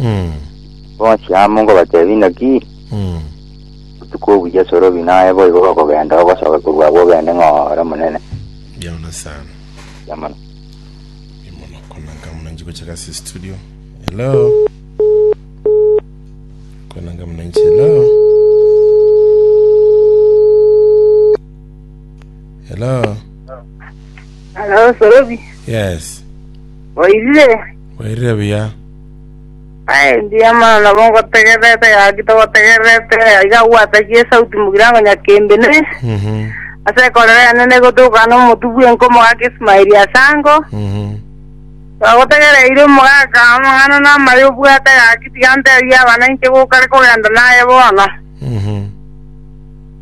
Mm. Bonsi amo nkobateebia inaki, Mm. botuko obu Yeso orobi naye boigo gokogenda ogosoka korwa agwo ogende ng'a ore omonene. Mbiamono sana. Yamana. Mbiamono konanga munanchi gochaka ase studio. Hello. Konanga munanchi hello. Hello. Halo, Sorobi, Yes. oirire? Oirire buya. Aye engiya mana nabo ngotegererete gaki togotegererete aiga gwatagie esauti mogirango nyakembene Mhm. ase ekorero yane negotokana omotu bw'enka omogaka Ismaeli ase ango Mhm. bagotegereire omogaka amang'ana namaya obwate gaki tiga nteebie abana inche gokare kogenda naye bono Mhm.